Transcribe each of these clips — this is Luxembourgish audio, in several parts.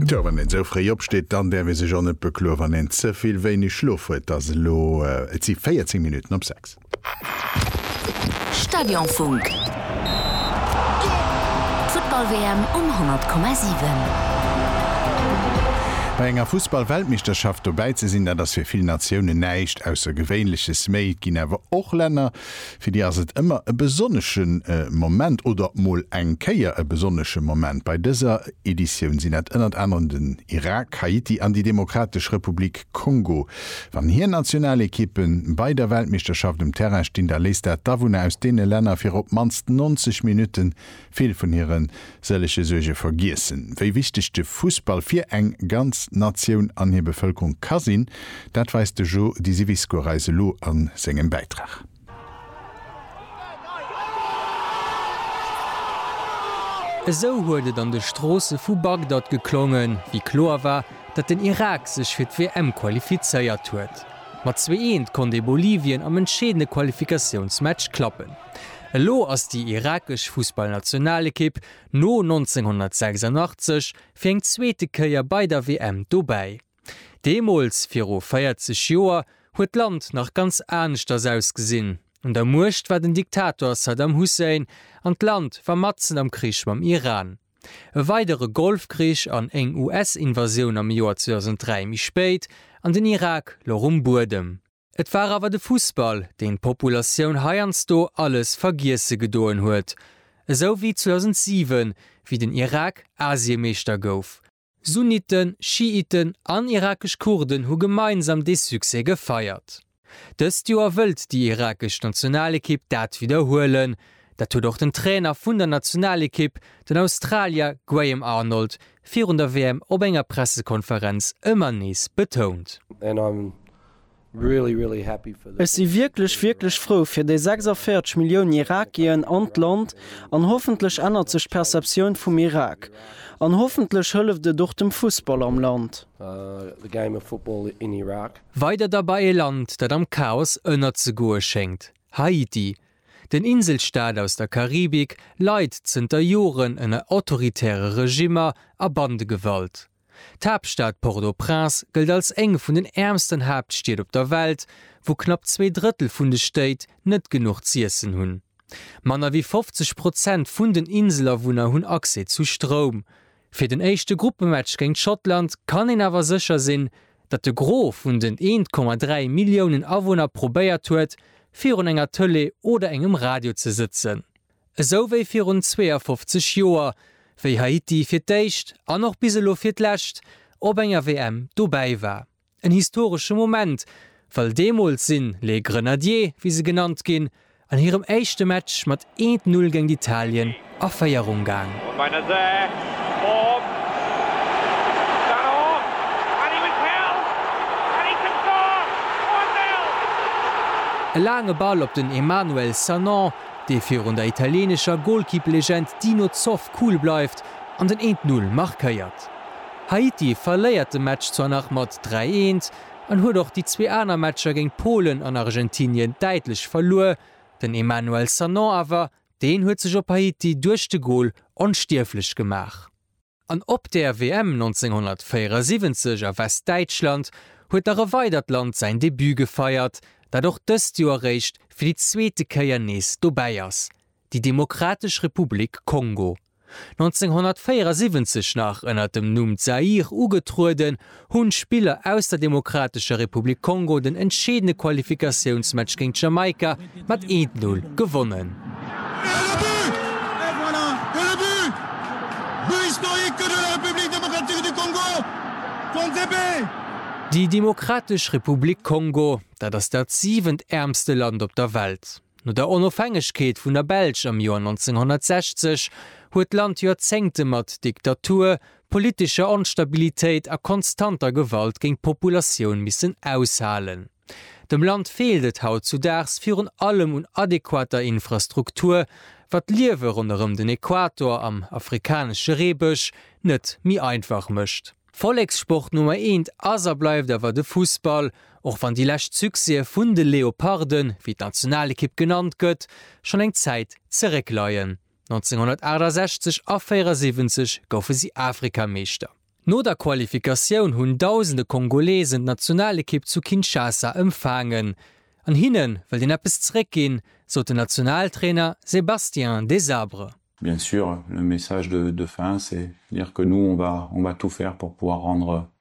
Tjo, wann een esou fréi opsteet, dann däerf ee sech och net bekloe wann een ze vill wéineg Schlof huet. Et ass elo, et si 14 Minutten op 6. Stadionfunk. D'Futtball-WM um 100,7. Bei enger Fussball-Weltmeeschterschaft dobäi ze sinn, dat ass fir vill Natiounen näischt Aussergewéinleches. Mee et ginn awer och Länner, Fir déi ass et ëmmer e besonnesche Moment oder mol eng Kéier e besonnesche Moment. Bei dëser Editioun sinn dat ënnert anerem den Irak, Haiti an déi Demokratesch Republik Kongo. Wann hir Nationalekippe bei der Weltmeeschterschaft um Terrain stinn, da léisst dat d'Awunner aus deene Länner fir op d'mannst 90 Minutte Vill vun hire sëllege Suerge vergiessen, wéi wichteg de Fussball fir eng ganz Natioun an hir Bevëlkerung ka sinn, dat weist de Jo Disiviscourt eis elo a sengem Bäitrag. Esou huet et an de Stroosse vu Bagdad geklongen, wéi kloer war, datt den Irak sech fir d'WM qualifizéiert huet. Mat zwee Eent konnt ee Bolivien am entscheedende Qualifikatiounsmatch klappen. Elo ass déi irakesch Fussballnationalekipp no 1986 fir eng zweete Kéier bei der WM dobäi. Deemools, viru 40 Joer, huet d'Land nach ganz aneschters ausgesinn. Un der Muecht war den Diktator Saddam Hussein an d'Land war matzen am Krich mam Iran. E weidere Golfkrich an eng US-Invasioun am Joer 2003 méi spéit an den Irak louch um Buedem. Et war awer de Fussball, deen d'Populatioun heiansdo alles vergiesse gedoen huet, esou wéi 2007, wéi den Irak Asiemeeschter gouf. Sunniten, Schiiten an irakesch Kurden hu gemeinsam dee Succès gefeiert. Dëst Joer wëllt déi irakesch Nationalekipp dat widderhuelen. Dat huet och den Trainer vun der Nationalekipp, den Australier Graham Arnold, virun der WM op enger Pressekonferenz ëmmer nees betount. Ech si wierklech, wierklech frou fir déi 46 Millioun Irakien an d'Land, an hoffentlech ännert sech d'Perceptioun vum Irak, an hoffentlech hëlleft et och dem Fussball am Land. Weider da bei e Land, dat am Chaos ënnerzegoe schéngt, Haiti. Den Inselstaat aus der Karibik leit zënter Joren ënner autoritäre Regimmer a Bandegewalt. D'Haaptstad Port-au-Prince gëllt als eng vun den äermsten Haaptstied op der Welt, wou knapp zwee Drëttel vun de Stéit net genuch z'iessen hunn. Manner wéi 50 Prozent vun den Inselawunner hunn Accès zu Stroum. Fir den éischte Gruppematch géint Schottland kann een awer sécher sinn, datt de Gros vun den 1,3 Milliounen Awunner probéiert huet, virun enger Tëlee oder engem Radio ze sëtzen. Esou wéi virun 52 Joer, wéi Haiti fir d'éischt, an och bis elo fir d'lescht, op enger WM dobäi war. En historesche Moment, well deemools sinn Les Grenadiers, wéi se genannt ginn, an hirem éischte Match mat eent Null géint Italien a Féierung gaang. E laange Ball op den Emmanuel Sanon, dee virun der italieenescher Golkipplegend Dino Zoff cool bleift an den eent Null markéiert. Haiti verléiert de Match zwar nach mat dräi eent an huet och déi zwee aner Matcher géint Polen an Argentinien däitlech verluer, den Emmanuel Sanon awer, deen huet sech op Haiti duerch de Gol onstierflech gemaach. An op der WM 1974 a Westdäitschland huet nach e weidert Land säin Debut gefeiert, dat och dëst Joer eréischt fir déi zweete Kéier nees dobäi ass, déi Demokratesch Republik Kongo. 1974 nach ënner dem Numm Zaïre ugetrueden, hunn d'Spiller aus der Demokratescher Republik Kongo den entscheedende Qualifikatiounsmatch géint Jamaika mat 1-0 gewonnen. Déi Demokratesch Republik Kongo, dat ass dat siwent äermste Land op der Welt. No der Onofhängegkeet vun der Belsch am Joer 1960 huet d'Land Joerzéngte mat Diktatur, politescher Onstabilitéit a konstanter Gewalt géing d'Populatioun missen aushalen. Dem Land feelt et hautzudaags virun allem un adequater Infrastruktur, wat d'Liewe ronderëm den Equator am afrikanesche Reebësch net méi einfach mécht. Vollekssport Nummer eent ass a bleift awer de Fussball, och wann déi lescht Succèse vun de Leoparden, wéi d'Nationalekipp genannt gëtt, schonn eng Zäit zeréckleien. 1968 a 74 goufe si Afrikameeschter. No der Qualifikatioun hunn dausende Kongolesen d'Nationalekipp zu Kinshasa ëmfaangen. An hinne wëllt een eppes zeréck ginn, sot den Nationaltrainer Sébastien Desabre. Bien sûr, le message de fin c'est dire que nous on va tout faire pour pouvoir rendre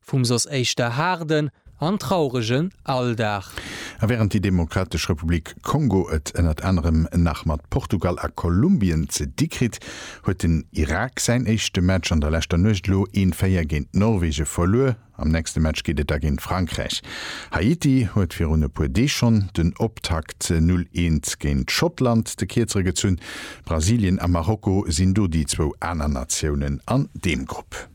Vum soss éischter haarden an trauregen Alldag. A wärend déi Demokratesch Republik Kongo et ënnert anerem nach mat Portugal a Kolumbien ze di kritt, huet den Irak säin éischte Match an der leschter Nuecht elo een 4 géint d'Norwege verluer. Am nächste Match geet et da géint Frankräich. Haiti huet virun e puer Deeg schonn den Optakt 0 Eens géint Schottland de Kierzere gezunn. Brasilien a Marokko sinn do déi zwou aner Natiounen an deem Grupp.